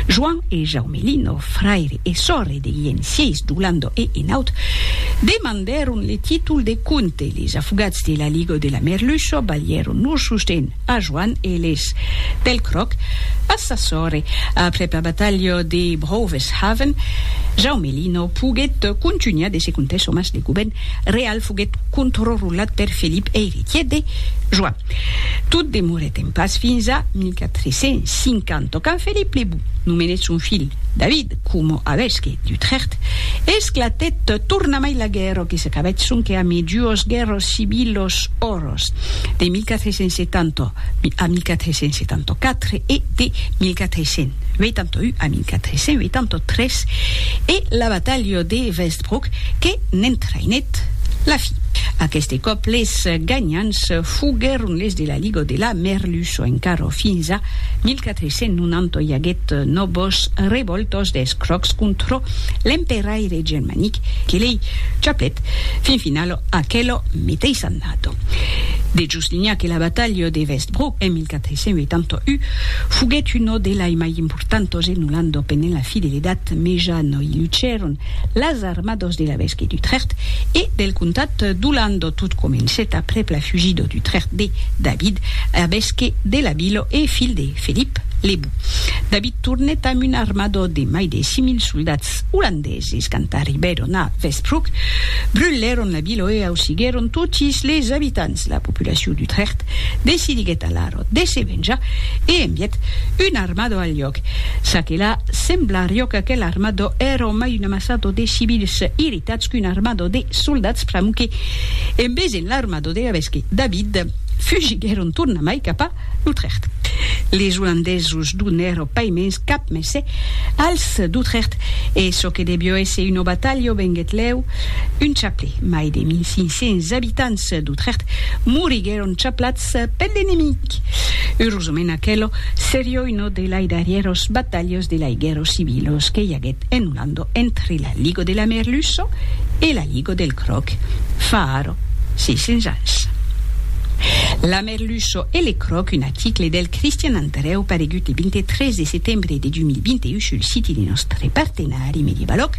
Joan e Jaume Lino, fraire e sòrre de Llencièis Doulando e Enaut, demandèron le títol de comte. Les afogats de l'Aligo de la Merluço balhèron lor sosten a Joan e les Pelcròc a sa sòrre. Après la batalha de Brouves-Haven, Jaume Lino poguèt contunhar de se contes òmes. Le govèrn real foguèt contrrolat per Felip, eiretièr de Joan. Tot demorèt en pas fins a 1350, quand Felip le Bon nomenèt son filh David coma avesque d'Utrecht. Esclatèt tornamai la guèrra que s'acabèt sonque amé duos guèrras civilas òros, de 1470 a 1474 e de 1481 a 1483, e la batalha de Vestfold, Pòc que n'entraïnèt la fi. Aqueste còp les ganhants foguèron les de la Liga de la Merluço encara fins a 1490 i aguèt nòvas revòltas des Crocs contra l'emperaire germanic que lei chaplèt fin finala aquela meteissa annada. De Justinha que la batalha de Westbrook en 1481 foguèt una de lai mai importantas en Olanda pendent la fideledat mejana i lucèron Las armados de l'evesque d'Utrecht e del comtat d'Olando. Tot comencèt aprèp la fugida d'Utrecht de David, evesque de la vila e filh de Felip le Bou. David tornèt amb una armada de mai de 6.000 soldats olandeses. Quand arribèron a Westbroek, brulèron la vila e ausiguèron totis les abitants. La populacion d'Utrecht decidiguèt alara pòt de se venjar e envièt un armado al lhòc. Ça que la, semblarió qu'aquel armado èra mai un amassado de civils irritats qu'un armado de soldats pr'amor que, en vesent l'armado de Gavesque, David, fugiguèron tornamai cap a L'Utrecht. Les Olandesos donèro pas mens cap mèsse als d'Utrecht e çò que devió èsser una batalha venguèt lèu un chaplè. Mai de 1500 abitants d'Utrecht moriguèron chaplats Eth pèth enemic. Urosament aquelo serio uno de lai darrieros batalhos de lai guerros civilos que i aguet en Ulando entre la Ligo de la Merluço e la Ligo del Croc fa ara 600 ans. La Merluço e le Croc, un article del Cristian Andreu paregut le 23 de setembre de 2021 sul siti de nòstre partenari Medievaloc.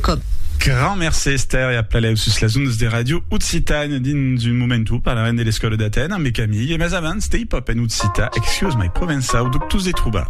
Com. Grand mercé Esther e aplalèu sus las ondes de Radio Occitània. Dins un moment o parlarem de l'escòla d'Atèn ambe Camille, mas abans, Stay Pop en occitan, Excuse my provençau, dubtós de trobar.